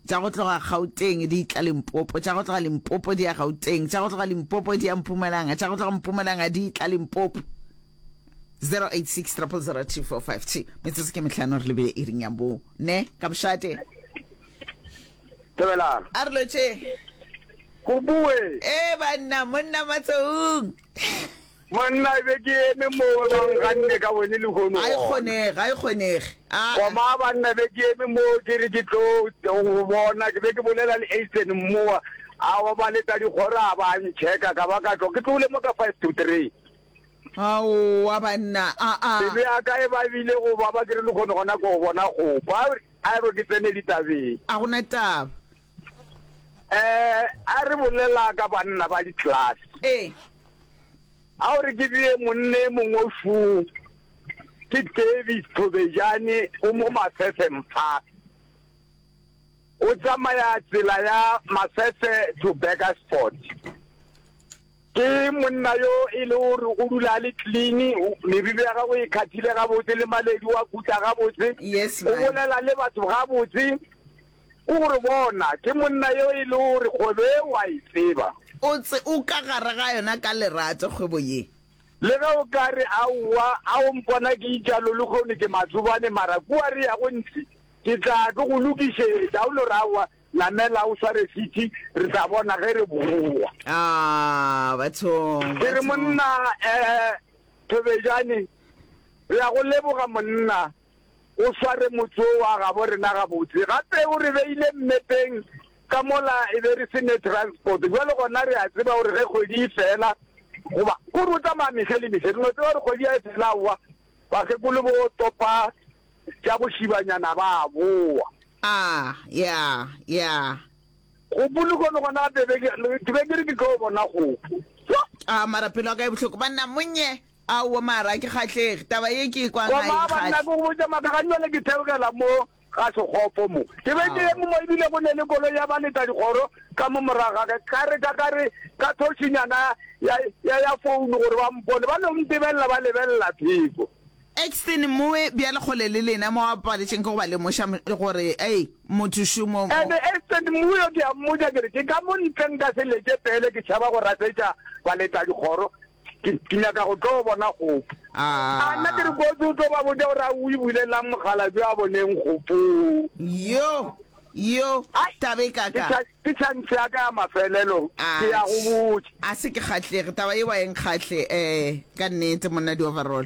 tša go tloga Gauteng di tla Limpopo, tša go tloga Limpopo di ya Gauteng, tša go tloga Limpopo di ya Mpumalanga, tša go tloga Mpumalanga di tla Limpopo. 0860000245 metsotso ke mehlano re lebile iring ya bo ne ka bošate Dumelang. a re lotše Go bue. e banna monna matsoung Monna, ke be ke eme mo o bang ga nne ka wene lehono Ga e gona. kgonege, ga e kgonege. Aa. Koma, banna, be ke eme mo ke re ke tlo go bona. Ke be ke bolela le Eisen mmowa, a obaletša dikgoro a ba a ntšheka, ka ba ka tlo. Ke tlogile mo ka five to three. Aowa, banna, aa. Pelo ya ka e babile go baba ke re lehono gona ko go bona kgopa. A re ke tsene ditabeng. A go na taba. eh a re bolela ka banna ba di-class ee a o re ke bee monne mongwe foo ke davis thobejane o mo masefeng fa o tsamaya tsela ya masese to beckersport ke monna yo e le gore o dula a le clean meriri ya gago e kgathile gabotse le maledi wa kutla gabotse o bolela le batho gabotse Ke gore bona, ke monna yo e le gore kgwebo e o a e tseba. O tse o ka gare ga yona ka lerato kgwebo ye. Le ge o ka re, Aowa, a o mpona ke itša lo lehono ke matsobane, mara kua re yago ntši ke tla tlo go lokišetša. O no re, Aowa, namela o sware seat, re tla bona ge re bowa. Aah, bathong, Ke re, bathong. Monna, eh, Thobejane, re ya go leboga, monna. O sware motse wo wa gabo rena gabotse. Gape o re beile mmepeng ka mola e be re se ne transport. Bjale gona re a tseba gore ge kgwedi e fela, goba ke gore o tsamaya mehla le mehla, re no tseba gore kgwedi ga e fela aowa, bakgekolo bo topa tša bošibanyana ba a bowa. A, ya, ya. Kgopo lehono gona gape, ke be ke re ke tlo bona kgopo. A, mara pelo ya ka e bohloko, banna, monnye. Aowa mara a ke kgahlege, taba ye ke e kwang ga e Tšomaa banna nkgahle. ke go botša maaka gane bjale ke theogela mo ga sekgopo mo. Ke be ke eme mo ebile go ne le koloi ya ba leta dikgoro ka mo morago ga ka ka re ka ka re ka thoshinyana ya ya ya founu gore ba mpone ba no ntebelela ba lebelela theko. Exton mowe bjale kgole le lena mo a paletšeng ke go ba lemoša m gore ei motho šo mo mo. Ene Exton mowe yo ke a mmotša ke re ke ka mo ntle nka se leke pele ke tšhaba go rasetša ba leta dikgoro Ke, ke nyaka go tlo bona kgopo. A nna ke re ko tse o tlo ba botša gore a o e bulelelang mokgalabje a boneng kgopo. Yo, yo, Ai, taba e ke kaka. tša- Ke tšhantšhe ya ka ya mafelelo, ke ya go botša. a se ke kgahlege taba ye wa enkgahle um ka nnete monna di-overall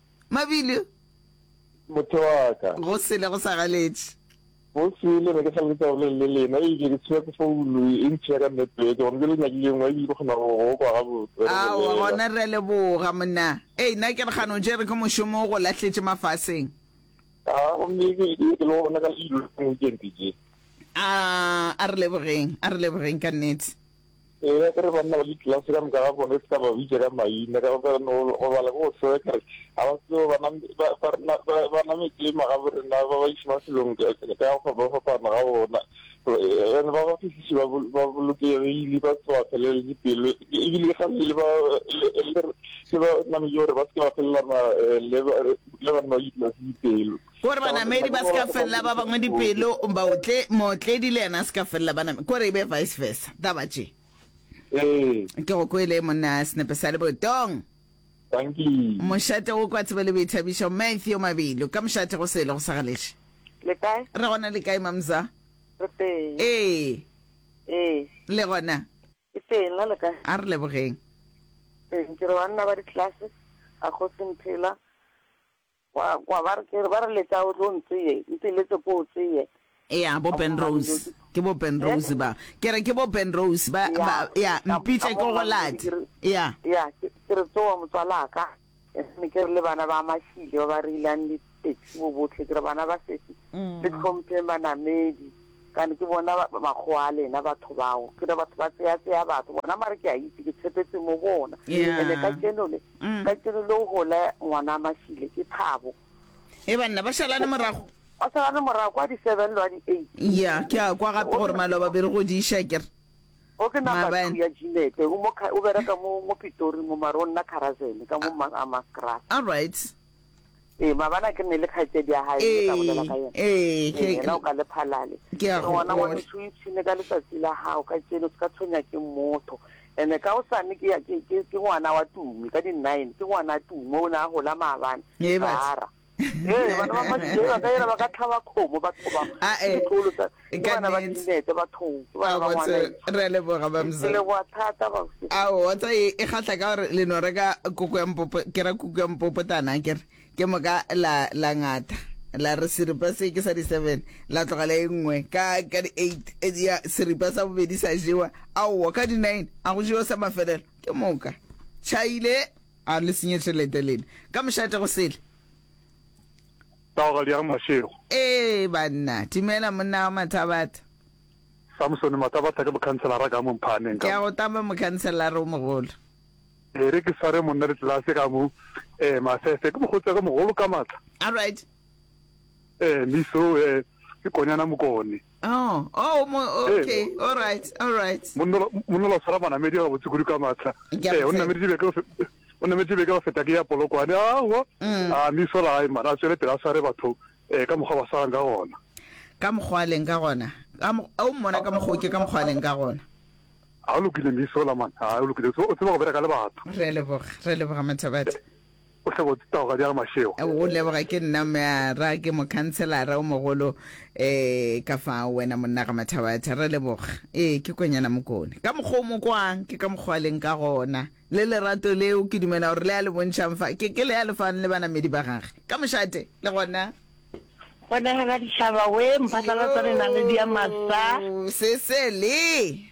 Mabilo. Motho wa ka. Go sele go sa galetše. Go sele ne ke sa leka gore le lena e ke ke tsheya ke founu e ntsheya ka network gore ke le nyakile ngwa e ke kgona go go kwa ga botse. Ao gona re le boga monna. Ei na ke re gano jere ke mošomo go lahletše mafaseng. A go mme ke ke ke lo bona ka le ile ke ke ke. A a re lebogeng, a re lebogeng ka nnete. Ee, ya kore banna ba ditlelase ka moka ga bona e se ka ba bitša ka maina ka gobane go bala ko go seo kare ga ba tseo ba nametse magaborena ba ba iše mafelong ka go fapafapana ga bona ande ba ba fihlise ba bolokegile ba se ba felele dipelo ebile ga le ba nametse gore ba se ba felelana le banna ba ditlelase dipelo Kore banamedi ba se ka felela ba bangwe dipelo, baotle, mootledi le yena a se ka felela banamedi, kore e be vice versa, taba tše. Ee. Ke go kwele monna senepe sa lebotong. Tanki. Mošate go kwa tsebe le boithabišo, Matthew Mabilo, ka mošate go sele go sa galeše. Le kae? Re gona le kae mamza? Re teng. Ee. Ee. Le gona? Ke teng, na le kae? A re lebogeng. Teng, ke re banna ba di-class, ga go se mphela. Kwa, kwa, ba re, ke re, ba re leta o tlo ntseye, nte letse ko o tseye. Ea, bo Ben Rose. Ke bo Ben Rose ba. Ke re, ke bo Ben Rose ba, ba, ea, mpitša ke go late. Ea. Ea, ke, ke re, tsowa motswalaka. Mme ke re le bana ba Mashile ba ba reilang le taxi bo bohle, ke re, bana ba sesi, le tlhompheng banamedi. Kane ke bona makgowa a lena batho bao. Ke re batho ba tseya tseya batho bona mare ke a itse ke tshepetse mo bona. Ene ka tšeno le ka tšeno le o hole ngwana Mashile ke Thabo. E banna ba shalane morago. Ba shalane morago kwa di 7 lo a di 8. Ya ke a kwa gape gore maloba be re go di isha ke re. O ke na ba ya Jinete o mo o bereka mo mo Pitori mo maro nna Kharazene ka mo Masgrass. All right. Ee, mabana ke ne le kgaetšedi ya gae le ka bolela ka yena. Ee, ke yena o ka le phalale. Ke a go bona gore o itshine ka letsatsi la gago ka tšeno se ka tshwenya ke motho. Ene ka o sane ke ke ke ke ngwana wa Tumi ka di nine ke ngwana Tumi o ne a gola maabane. Ee, ba. Ee, bana ba masheba ka yena ba ka tlhaba kgomo batho ba. A e. ke Ka bana ba nnete. dibete bathong ke bana ba ngwana Abotse, re a leboga ke bamsa leboa thata babse ao wa tsa e e kgahla ka gore le no reka koko ya mpopo ke ra kuku ya mpopotana ke re ke moka la la ngata la re seripa se ke sa di seven la tlogela e nngwe ka ka di eight e di ya seripa sa bobedi sa jewa aowa ka di nine a go jewa sa mafelelo ke moka chaile a le senye tšhelete lena ka mošate go sele Taogadi ya ga Mashego. Ee, banna. Dumela, monna wa Mathabatha. Samsone Mathabatha ke mokhanselara ka mo Mphaaneng ka mo. Ke a go tama, mokhanselara o mogolo. E re ke sware monna ditlelase ka mo, ee, Masese. Ke mokgotsi wa ka mogolo ka maatla. All right. Ee, Miso, ee, ke Konyana Mokone. Oh, oh, mo, oh, okay, Ee. all right, all right. monna ola- monna ola o tshwara manamedi a gabotse kudu ka maatla Ke a ee o mo nameditse beke go fe- o nameditse beke go feta ke ya polokwane aowa Mm. a mme isola gae mana a tswele pele a sware batho um ka mokgwa ba swarang ka gona ka mokgwa a leng ka gona Ka mo- a o mmona ka mokgwa o ke ka mokgwa a leng ka gona ga o lokile mme isola mana ga o lokile o tseba- o tseba go bereka le batho re leboga re leboga mathabadi O hle go tao ga di a re Mashego. Go go leboga ke nna mme a ra ke mokhanselara o mogolo eh ka fa wena monna ga mathabatha re leboga ee ke kwenyana mokone ka mokgwa o mo kwang ke ka mokgwa leng ka gona le lerato leo ke dumela gore le a le bontšhang fa ke ke le a lefang le banamedi ba gage ka mošate le gona gona ga ga ditšhaba we mphatlalatsa re na le diamasa se se le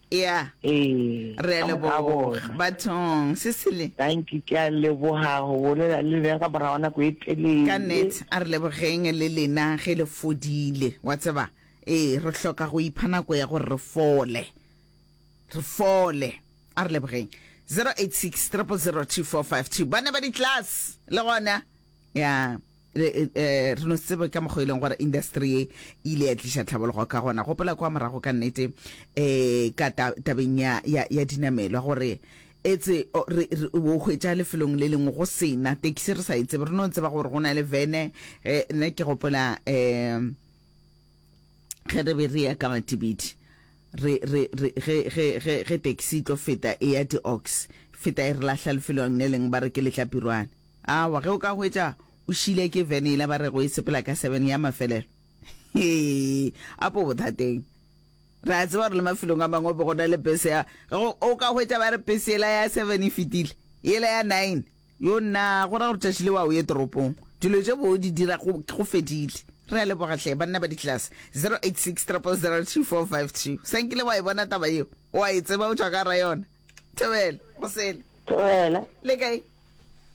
ya Ee, re a ka moka a leboga bona. bathong sesele Thank you, ke a leboga go bolela le lena ka morago nako e telele. ka net a re lebogeng le lena ge le fodile wa tseba ee re hloka go ipha nako ya gore re fole re fole a re lebogeng 086 0002452 ba ne ba di-class le gona ya Le, eh, eh, re no se tsebe ka mokgwa e leng gore industry e ile ya tliša tlhabologo ka gona gopola kwa morago ka nnete um ka ta- tabeng ya, ya, ya dinamelwa gore etse o re re- o hwetša lefelong le lengwe go sena tekisi re sa e tsebe re no tseba gore go na le vene um nna ke gopola um ge re be re ya ka matibidi re re re ge ge ge ge taxi e tlo feta e ya di-ox feta e re lahla lefelong le leng ba re ke letlapirwane Awa, ge o ka hwetša o šile ke vene yela ba rego e sepela ka seven ya mafelelo. Hee, a po bothateng. Re a tseba gore le mafelong a mangwe bo gona le bese ya, ge go, o ka hwetša ba re bese yela ya seven e fetile, yela ya nine, yo nna, go ra gore tšatši le wa o ye toropong. Dilo tše bo di dira go, go fedile. Re a leboga hle, banna ba di-class. 086 000 3452. Sa nkile wa e bona taba yeo? O a e tseba o tšwa ka ga yona? Thobela, go sele. Thobela. Le kae?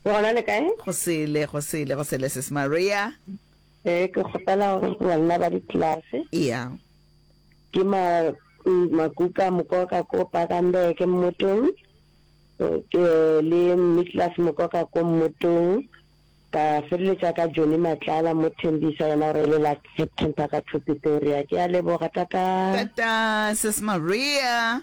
Ke gona le kae? Go sele, go sele, go sele sis Maria. Eh, ke kgopela gore banna ba ditlelase. Yeah. Ke ma makuka mokoka ko Pakambeke ke mmotong. Ke le Niklas mokoka ko mmotong. Ka feleletsa ka Johnny Matlala mo Thembisa yena o rele la September ka Pretoria. Ke a leboga tata. Tata sis Maria.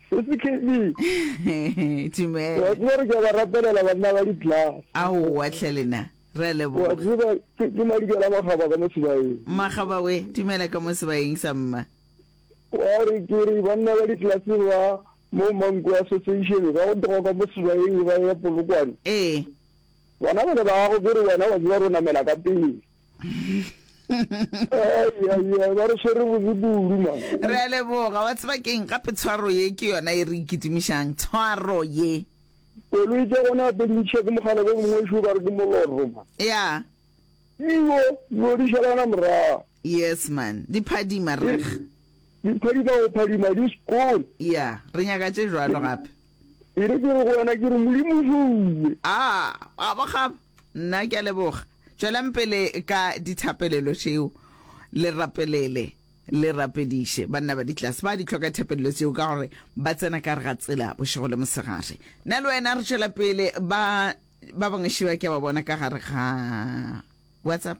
Re se khebi. Tumele. Wa tseba re ka ba rapelela banna ba di-glass. Ao wa tlhelena. Re a leboga. Wa tseba ke ke madikela magaba ka mo sebaeng. Magaba we, tumela ka mo sebaeng sa mma. Wa re ke re banna ba di-glass ba mo Manku Association ba go tloga ka mo sebaeng ba ya Polokwane. Ee. Bana ba ne ba go ke re wena wa tseba ro namela ka pele. re a leboga wa tseba keng gape tshwaro ye ke yona e re ikitimišang tshwaro ye koloi tsa gona gape dintšha ke mogala bo mongwe šo ba re ke moloroma ya io io di šalana morago yes man di phadima re di phadima go phadima di sekole ya re nyaka tše jwalo gape e re ke re go wena ke re modimo šouwe a a ba gape Nna ke a leboga. Tšwelang pele ka dithapelelo tšeo. Le rapelele, le rapediše. Banna ba ditlase ba di hloka thapelelo tšeo ka gore ba tsena ka re ga tsela bošego le mosegare. Nna le wena re tšwela pele. Ba ba bangwe šiba ke a ba bona ka gare ga WhatsApp.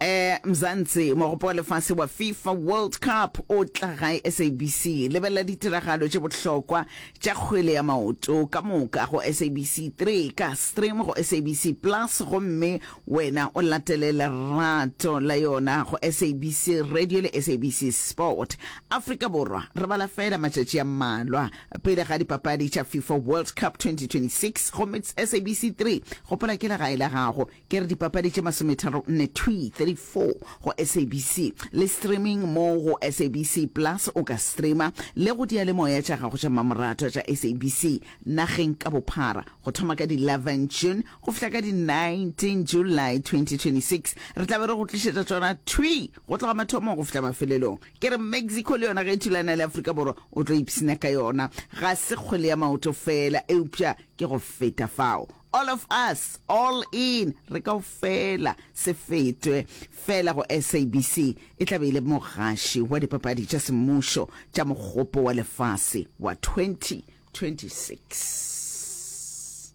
Ee, Mzansi, mogopo wa lefase wa Fifa World Cup o tla gae SABC. Lebelela ditiragalo tše bohlokwa tša kgwele ya maoto ka moka go SABC 3 ka stream go SABC Plus gomme wena o latele lerato la yona go SABC Radio le SABC Sport. Afrika Borwa re bala feela matšatši a mmalwa pele ga dipapadi tša Fifa World Cup 2026 gomme SABC 3 gopola ke legae la gago. ke re dipapadi tše masometharo nne thwi, 34, go SABC, le streaming mo go SABC Plus o ka streama le go diyalemoya tša gago tša mmamoratwa tša SABC nageng ka bophara. Go thoma ka di 11 June go fihla ka di 19 July 2026, re tla be re go tlišetša tšona thwi go tloga mathomong go fihla mafelelong. Ke re Mexico le yona ge e thulana le Afrika Borwa o tlo ipshina ka yona, ga se kgwele ya maoto feela eupša ke go feta fao. All of us, all in, re kaofela, se fetwe fela go SABC, e tla be e le mogaši wa dipapadi tša semmušo tša Mogopo wa Lefase wa 2026.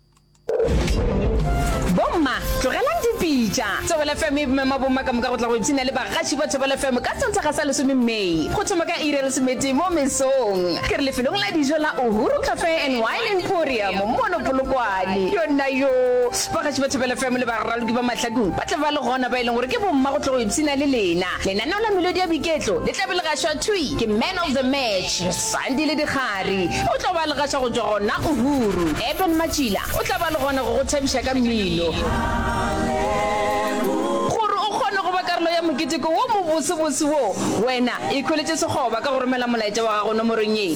Bomma, tlogelang dipitša. Thobela FM e mema bomma ka moka go tla go ipshina le bagaši ba Thobela FM ka Sontaga sa lesome May, go thoma ka iri ya lesometee mo mesong. Ke re lefelong la dijo la Uhuru Cafe and Wine. Emporium, mono Polokwane. Yona yoo, bagatši ba Thapelo FM le baraloki ba Mahladung ba tla ba le gona, ba e leng gore ke bomma go tlo go ipshina le lena. Lenaneo la melodi ya boiketlo le tla be le gašwa thwi ke Man of the Match, Sandile Dikgari. O tlo ba le gaša go tšwa gona Uhuru. Eben Matšila o tla ba le gona go go thabiša ka mmino. Gore o kgone go ba karolo ya moketeko wo mobosobose wo, wena ikhweletše sekgoba ka go romela molaetša wa gago nomorong ye,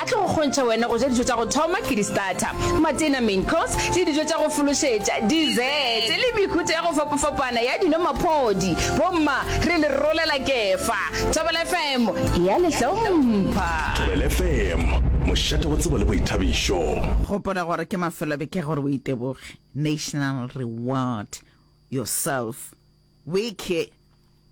A tlo go kgontšha wena go ja dijo tša go thoma, ke di-starter, matena, main course, le dijo tša go fološetša, dessert, le mehuta ya go fapafapana ya dino, maphodi. Bomma, re le rolela kefa. Thobela FM e a le hlompha. Thobela FM, mošate wa tsebo le boithabišo. Gopola gore ke mafelobeke gore o iteboge, national reward yourself. Weke,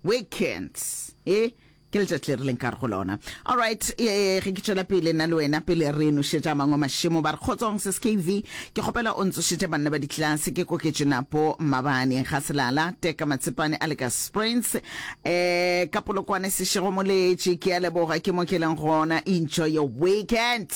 weekends, e ke letšatši le re leng ka re go lona. Alright, e ge ke tšwela pele nna le wena pele re nošetša mangwe mašemo ba re kgotsong se skv ke kgopela o ntsošetše banna ba ditlase ke koketše napo mabane ga selala teka matsepane a le ka springs um ka polokwane sešego moletše ke a leboga ke mo ke leng gona enjoy your weekend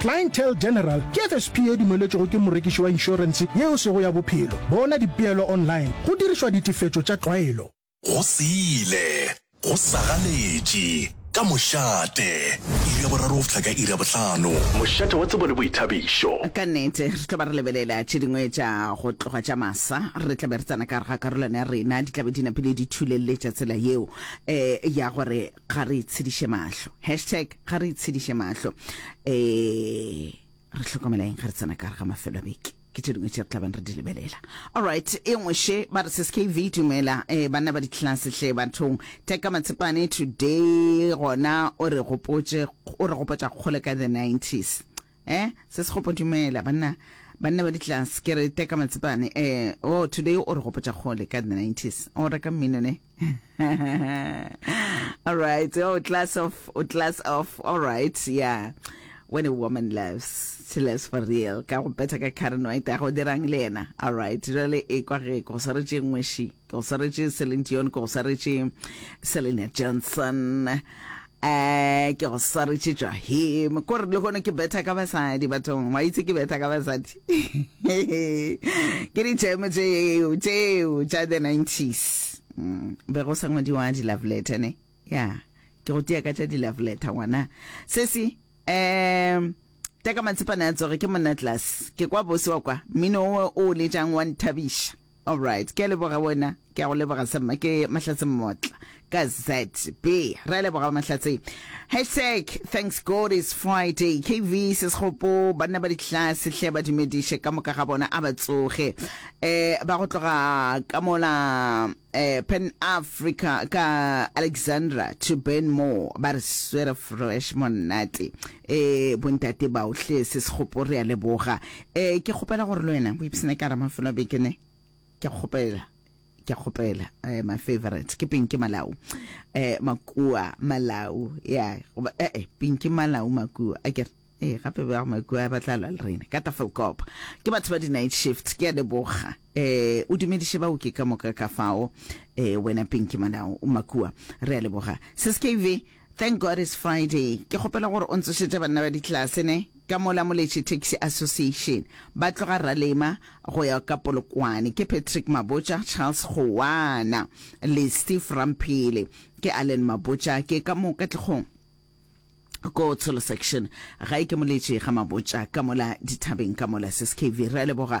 Clientele General ke FSP e dumeletšwego ke morekiši wa inšorense yeo sego ya bophelo. Bona dipeelo online go dirišwa ditefetšo tša tlwaelo. Go se ile, go sa ganetše, ka mošate. Iri ya boraro go fihla ka iri ya bohlano. Mošate wa tsebo le boithabišo. Ka nnete, re tlo ba re lebelela tše dingwe tša go tloga tša masa. Re tla be re tsena ka gare ga karolwana ya rena, di tla be di napile di thulelletša tsela yeo ya gore ga re itshediše mahlo hashtag ga re itshediše mahlo um re tlhokomela eng ga re tsena ka re ga mafelo a beke ke tše dingwe tše re tlabang re di lebelela allright e nngwe she ba re seskv dumela um banna ba ditlelase hle bathong teka matshepane today gona o re gopotša kgole ka the 90s Eh, se se gopo dumela banna banna ba ditlase ke re teka matsepane eh oh today o re gopotša kgole ka the 90s o reka mmino ne all right oh class off oh, class off all right yeah when a woman loves she loves for real ka go betha ka karen white a go dirang le yena all right jale e kwa ge go swaretše ngweši go swaretše celine dion go swaretše selena johnson Eeh ke go swaretše tšwa him ko re lehono ke betha ka basadi bathong wa itse ke betha ka basadi ke ditšemo tšeo tšeo tša the 90s mm, be go sa ngwadiwa di-love letter ne ya ke go tia ka tša di-love letter ngwana sesi um teka matsipane a tsoge ke monna tlase ke kwa bose wa kwa mmino owe o letšang wa nthabiša Alright, ke a leboga wena. Ke a go leboga sa mma ke Mahlatse Mmotla ka ZB. Re a leboga ba Mahlatse. Hashtag thanks God is Friday. KV Sesgopo banna ba ditlase hle ba dumediše ka moka ga bona a ba tsoge. Eh ba go tloga ka mola eh Pan Africa ka Alexandra to Ben Moore ba re swere fresh monate. Ee, bontate bao, hle, se sekgopo, re a leboga. Ee, ke kgopela gore le wena o ipsene ka gara mafelo a beke ne. Ke a kgopela, ke a kgopela. Eh, my favorite, ke Pinky Malau. Eh, Makua Malau, ya, goba, eh, eh, Pinky Malau Makua, a kere. Ee, gape ba Makua ba tla lwa le rena. Ka Tafelkop. Ke batho ba di-night shift, ke a leboga. Eh, o dumediše baoki ka moka ka fao. Eh, wena Pinky Malau Makua, re a leboga. Sis KV, Thank God it's Friday. Ke kgopela gore o ntsošetše banna ba ditlelase ne, ka mola Moletše Taxi Association ba tloga Ralema go ya ka Polokwane. Ke Patrick Mabotja, Charles Kgowana le Steve Ramphele. Ke Allen Mabotja. Ke ka mo Katlehong ko Tsholo Section. Gae ke Moletše ga Mabotja ka mola dithabeng ka mola. Sis Kevy, re a leboga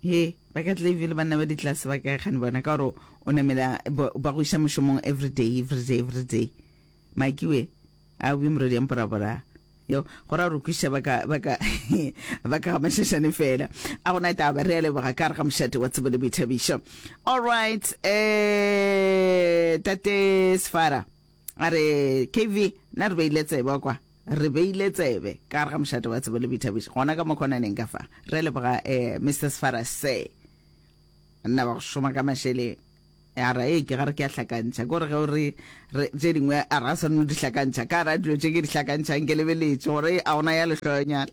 He, ba ka Clayville banna ba ditlase ba kae gane bona ka gore o namela ba go iša mošomong everyday everyday everyday makiwe a o be moredi ya mporabora yo go ra rukwiša ba ka ba ka ba ka mashashane fela a go na taba re a leboga ka re ga mošate wa tsebo le boithabišo all right eh tate sefara A re, KV, na re beile tsebe kwa? Re beile tsebe ka gare ga mošate wa tsebo le boithabiši, gona ka mokhonaneng ka fa. Re a leboga, eh, Mister Sefara, Sir. Nna ba go šoma ka mašeleng. A ra, ee, ke ga re ke a hlakantšha. Kore ge o re, re, tše dingwe a ra swanelo di hlakantšha. Ka gare ga dilo tše ke di hlakantšhang ke lebeletše gore a gona ya lehloyonyana.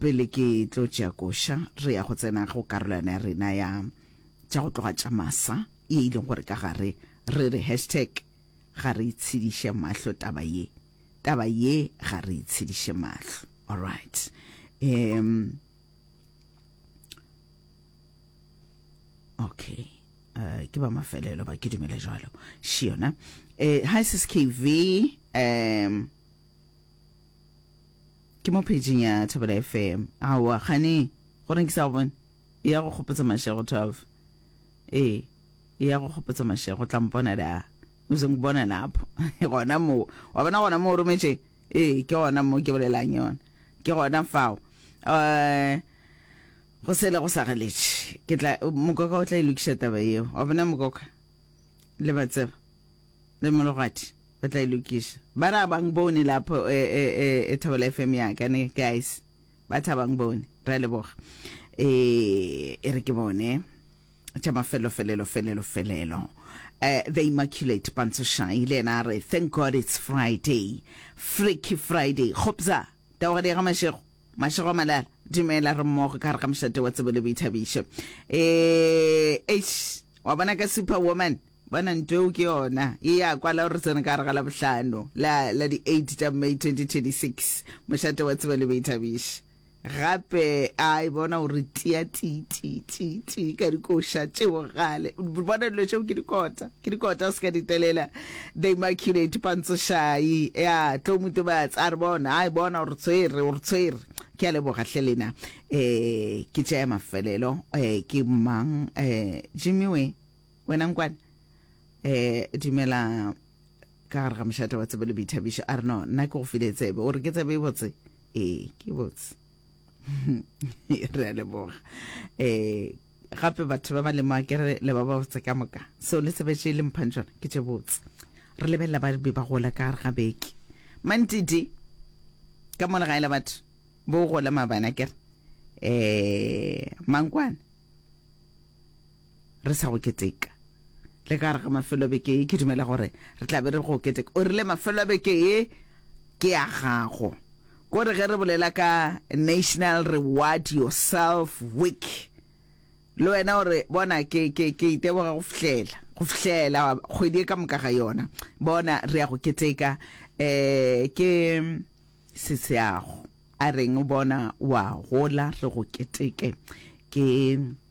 Pele ke tlo tšea koša, re ya go tsena go karolwana ya rena ya Tša go tloga tša masa, ye e leng gore ka gare re re hashtag Ga re itshediše mahlo taba ye. Taba ye ga re itshediše mahlo. Alright. Um, okay. Uh, ke ba mafelelo ba ke dumele jalo. Shiona. Uh, hi sis KV. Um, Ke mo pageng ya Thabela FM. Aowa, kgane, gore nke sa go bone. E ya go kgopotsa Mashego 12. Ee, e ya go kgopotsa Mashego. O tla mpona da. O se nkbona lapho. Gona moo. Wa bona gona moo o rometše? Ee, ke gona moo ke bolelang yona. Ke gona fao. Uh, go sele go sa galetše. Ke tla, mokoka o tla e lokiša taba yeo. Wa bona mokoka? Le ba tseba. Le mologadi ba tla e lokiša. Ba re a bang bone lapho e, e, e, e Thobela FM ya ka ne, guys. Ba tha bang bone. Re a leboga. E, e re ke bone. Tša mafelo felelo felelo felelo. Eh, the Immaculate Pantsho Shai le yena a re thank God it's Friday. Freaky Friday. Kgopza, taogadi ya ga Mashego. Mashego Malala. Dumela re mmogo ka gare ga mošate wa tsebo le boithabišo. Eh, eish, wa bona ka superwoman. Bona ntwa eo ke yona ye ya kwala gore re tsene ka gare ga Labohlano la la di 8 tša May 2026. Mošate wa tseba le boithabiši gape a e bona o re tia ti ti ti ti ka dikoša tše bogale. Bona dilo tšeo ke dikota ke dikota o se ka di telela. The Immaculate Pantsošai ya tlo mo tobatsa a re bona a e bona o re tshwere o re tshwere. Ke a leboga hle lena eh ke tša ya mafelelo eh ke mang eh Jimmy we Wena nkwane eh dumela ka gare ga mošate wa tsebe le boithabišo a re no nna ke go file tsebe o re ke tsebe e botse ee ke botse re a leboga eh gape batho ba ba le makere le ba ba botse ka moka seo le sebetše le mphang tsona ke tše botse re lebelela ba be ba gola ka gare ga beke mantidi ka mo legae la batho bo gola mabana kere eh mankwane re sa go keteka. Le ka gare ga mafelo a beke ye, ke dumela gore re tla be re go keteka. O rile mafelo a beke ye ke a gago. Ko re ge re bolela ka National Reward Yourself Week, le wena o re, bona, ke, ke, ke iteboga go fihlela, go fihlela kgwedi e ka moka ga yona. Bona, re ya go keteka, eh, ke seseago. A reng, bona, wa gola, re go keteke. Ke.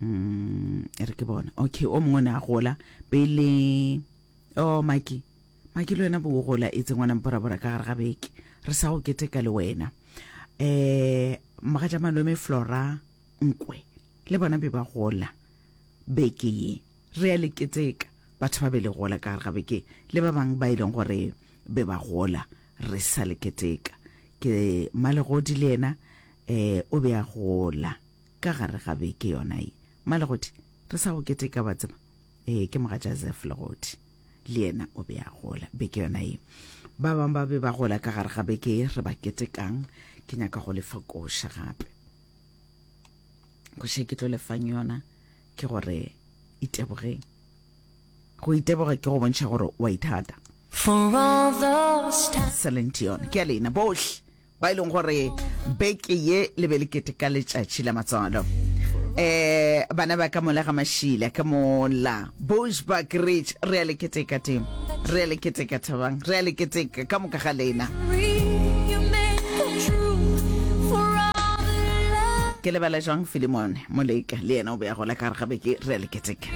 mm, e re ke bona okay o mongwe ne a gola pele o oh, maki maki le wena bo gola e tsengwana mporabora ka gare ga beke re sa go keteka le wena um maga ja malome flora nkwe le bona be ba gola beke ye re ya le keteka batho ba be le gola ka gare ga beke le ba bangwe ba e leng gore be ba gola re sa le keteka ke malegodi le ena Ee, o be a gola ka gare ga beke yona ye. Malegoti, re sa go keteka, wa tseba. Ee, ke mogatša Zeph Legoti. Le yena o be a gola beke yona ye. Ba bangwe ba be ba gola ka gare ga beke ye re ba ketekang. Ke nyaka go lefa koša gape. Koša e ke tlo lefang yona ke gore itebogeng. Go iteboga ke go bontšha gore wa ithata. For all those times. Celine Dion, ke a lena bohle. ba e leng gore beke ye le be le keteka letšatši la matswalo eh bana ba ka mola ga mašila ka mola bushback ridge re a le keteka teng re a le keteka thabang re a le keteka ka moka ga lena ke lebala jang filimone moleka le yena o be a gola ka gare ga beke re a le keteka